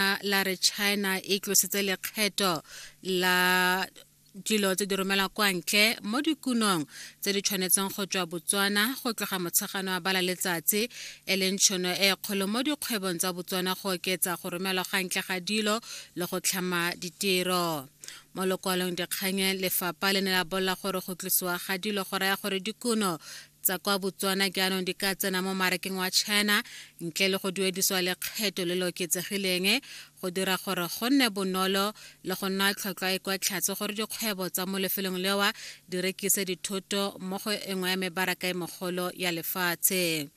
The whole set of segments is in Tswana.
lona la re china e tlositse lekgetho la dilo tse di romela kwa ntle mo dikunong tse di tshwanetseng go tswa botswana go tloga motshegano wa bala letsatsi e leng tshono e kgolo mo dikgwebong tsa botswana go oketsa go romelwa ga ntle ga dilo le go tlhama ditiro mo lokwalong dikganye lefapha le ne la bolela gore go tlosiwa ga dilo go raya gore dikuno tsa kwa Botswana jaanong di ka tsena mo marakeng wa China ntle le go duediswa lekgetho le le oketsegileng go dira gore go nne bonolo le go nna tlhotlhwa e kwa tlhatse gore dikgwebo tsa mo lefelong lewa di rekise dithoto mo go engwe ya mebaraka e mogolo ya lefatshe.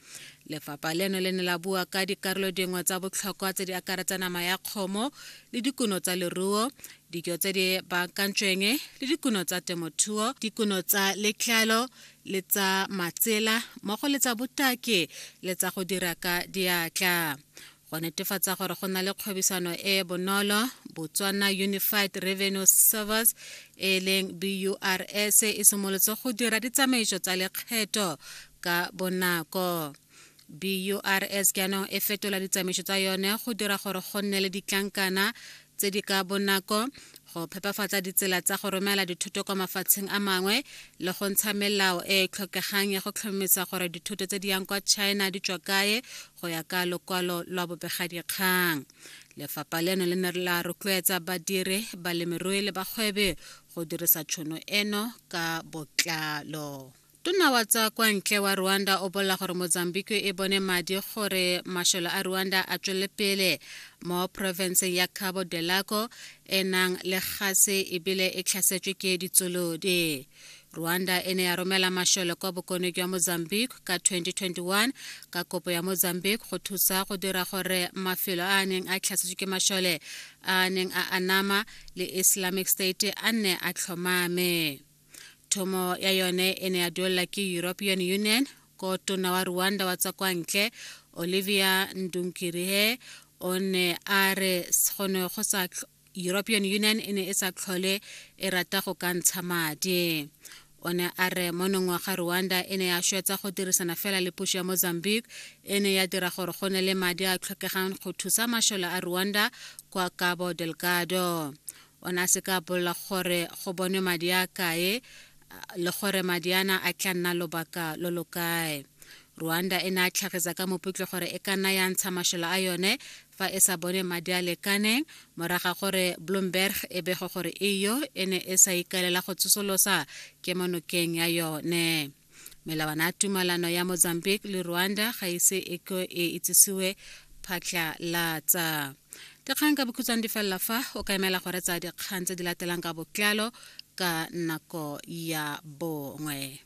Lefapha leno le ne la bua ka dikarolo dingwe tsa botlhokwa tse di akaretsa nama ya kgomo le dikuno tsa leruo, dijo tse di baakantsweng le dikuno tsa temothuo, dikuno tsa letlalo le tsa matsela mmogo le tsa botaki le tsa go dira ka diatla go netefatsa gore go na le kgwebisano e e bonolo botswana unified revenue service e leng burs e simolotse go dira ditsamaiso tsa lekgetho ka bonako BURS jaanong e fetola ditsamaiso tsa yone go dira gore go nne le ditlankana tse di ka bonako go phepafatsa ditsela tsa go romela dithoto kwa mafatsheng a mangwe le go ntsha melao e e tlhokegang ya go tlhomamisa gore dithoto tse di yang kwa china di tswa kae go ya ka lokwalo lwa bobegadikgang lefapha leno le ne la rotloetsa badiri balemirui le bagwebi go dirisa tšhono eno ka botlalo Tona wa tsa kwa ntle wa Rwanda o bolela gore Mozambique e bone madi gore masholo a Rwanda a tswelele pele mo provinceng ya Cabo Delgado e nang le gase ebile e tlhasetswe ke ditsolodi. Rwanda e ne ya romela masholo kwa bokone jwa Mozambique ka 2021 ka kopo ya Mozambique go thusa go dira gore mafelo a a neng a tlhasetswe ke mashole a a neng a anama le Islamic State a nne a tlhomame. thomo ya yone e ne ya duelela ke european union ko tona wa rwanda wa tsa kwa ntle olivia ndunkirihe o ne a re gone go sa european union e ne e sa tlhole e rata go ka ntsha madi o ne a re mo nongwaga rwanda e ne ya swetsa go dirisana fela le puso ya mozambique e ne ya dira gore go ne le madi a tlhokegang go thusa mashole a rwanda kwa cabo delgado o ne a se ka bolela gore go bonwe madi a kae le gore madi ana a tla nna lobaka lo lo kae rwanda e ne a tlhagisa ka moputle gore e ka nna ya ntsha mashola a yone fa e sa bone madi a lekaneng moraga gore bloomberg e bego gore eyo e ne e sa ikaelela go tsosolosa kemonokeng ya yone melawana ya tumalano ya mozambique le rwanda ga ise e ko e itsisiwe phatlhalatsa dikgang ka bokhutshwane di felela fa o ka emela gore tsa dikgang tse di latelang ka botlalo ka nako ya bongwe